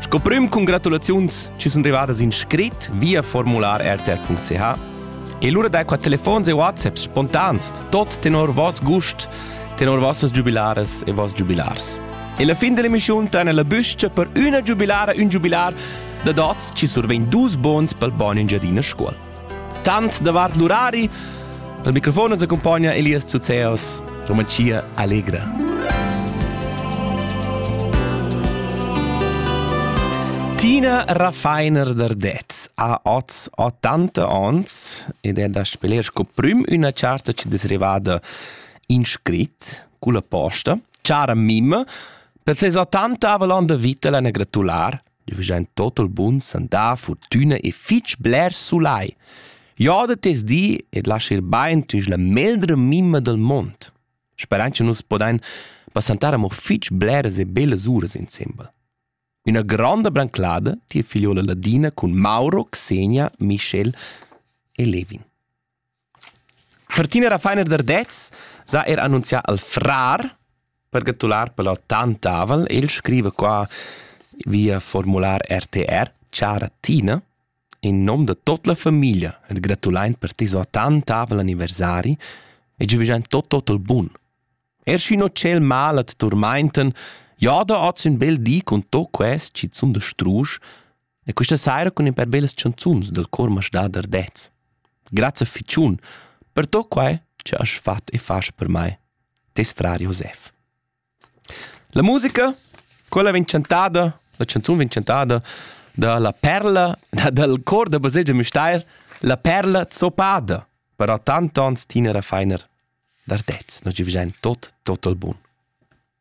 Sco prüm congratulaziuns chi sun rivadas in scrit via formular rtr.ch e lura dai qua telefons e whatsapps spontans, tot tenor vos gust, tenor vossas giubilaras e vos giubilars. E la fin dell'emissiun traina la büscha per üna giubilara ün giubilar da dots chi survegn dus bons pel bon Engiadina Scuol. Tant davart l'urari. Dal microfon ens accumpagna Elias Zuzeos, Romancia Allegra. Tina Raffeiner d'Ardez ha oz 80 ans ed è da speler sco prim üna charta che es arrivada in scrit culla posta, chara Mim, per ses 80 avalan da vita l'ana gratular Io veggia in total bun sandà, fortüna e fich bler sulai. Joda tes di ed lascha ir bain tüs la meldra mimma del mond. Sperand che nus podain passantar amo fich bleras e bellas uras insembel. Üna gronda branclada tia figliola Ladina cun Mauro, Xenia, Michel e Levin. Martina Rafainer Dardez s'ha eir annunzià al frar per gratular pel Otan Tavel. El scriva qua via formular RTR Chara Tina, in nom da tot la famiglia et gratulain per tes otan tavel anniversari e giuvegiain tot tot il bun. Er schi no tschel mal at turmainten, ja da hoz ün bel di cun to quest chi sun da strusch, E questa saira cun in per bellas chanzuns dal cor masdader dets. Grazie ficiun per tot quai che has fatg e fas per mai. Tes frar Josef. La musica, quella vegn chantada, la chanzun vegn chantada da la perla, dal cor da baselgia Müstair, la perla zoppada. Però tant ans tinera feiner d'artez, no ci vigen tot, tot al bun.